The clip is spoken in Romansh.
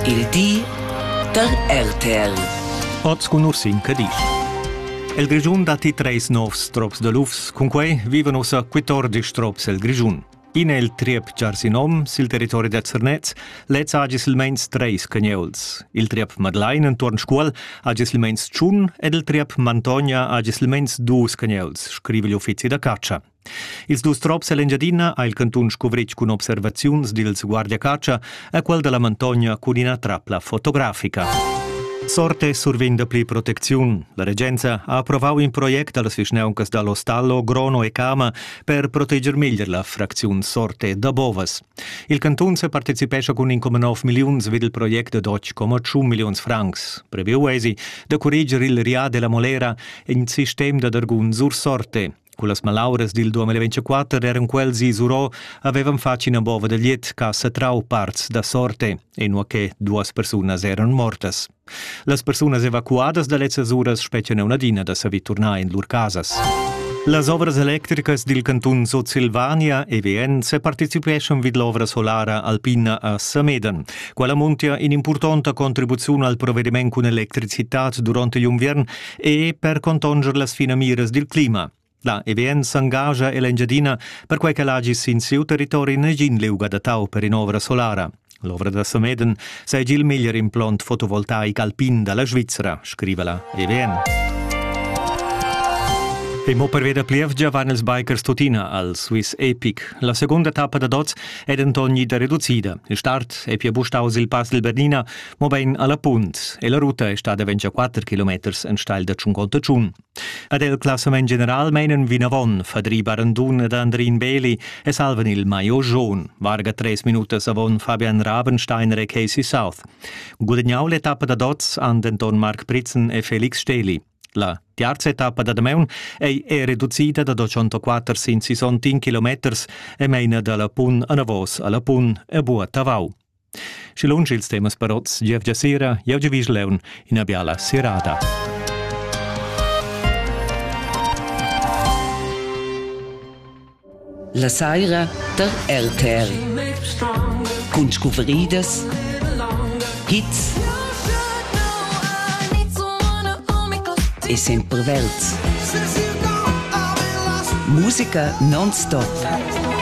Il di da RTL. Oz cun nus in Cadisch. El Grischun datti treis novs trops da lufs, cunquei vivan ussa 14 trops el Grischun. In è il triep Giarsinom sil territori da Zernez, lez ha silmeins treis cagneuls. Il triep Madlein entuorn Scuol ha silmeins tschun ed il triep Mantogna ha silmeins dus cagneuls, scriva l'uffizi da catscha. Ils dus trops ell'Engiadina ha il cantun scuvritg cun observaziuns dils guardiacatscha a quel dalla Montogna cun ina trapla fotografica. Sorte survegn dapli protecziun. La regenza ha approvau in project dallas vischnauncas dall'Ostallo, Grono e Cama per proteger meglier la fracziun Sorte da Bovas. Il cantun separticipescha cun 1,9 milliuns vid il project ad 8,1 milliuns francs. Previu eisi da curreger il Ria della Molera, in sistem da dargun sur Sorte. Cullas malauras dil 2024 eran quels isurò havevan fatg ina bova da liet che ha satrau parts da sorte, inua che duas persunas eran mortas. Las persunas evacuadas da lezzas uras spetgan una adina da saver turnar in lur casas. Las ovras electricas dil cantun Sutsilvania EVN separticipeschan vid l'ovra solara alpina a Samedan. Quella muntia in'impurtonta contribuziun al provediment cun electricitat durante l'inviern e per contonger las finamiras dil clima. La EVN s'engascha ella Engiadina perquai ch'el hagi sin siu territori negin liug adattau per in'ovra solara. L'ovra da Sameden seigi il meglier implont fotovoltaic alpin dalla Svizra, scriva la EVN. E mo per veder plievgia van ils bikers tuttina al Swiss Epic. La segunda tappa da dots è denton ida reducida. Il start è pia bustaus il pass del Bernina Mobein alla punt e la ruta è stada 24 kilometers enstagl da Tschungonta Tschun. Ad el classament general meinen vinavon Fadri Barandun ed Andrin Beli e salvan il Maio Jaun, varga tres minutas avon Fabian Rabensteiner e Casey South. Gudagnau l'etappa da dots han denton Marc Pritzen e Felix Steli. La terza etappa da Dameun ei è reducida da 204 sin 61 kilometers e meina dalla pun anavos alla pun e Bua Tavau. Schi lunsch ils temas parots gievgia sera, jevgia vis leun ina biala serada. La saira der RTR. Cun scuvridas, hits e sempre verds. Musica non-stop.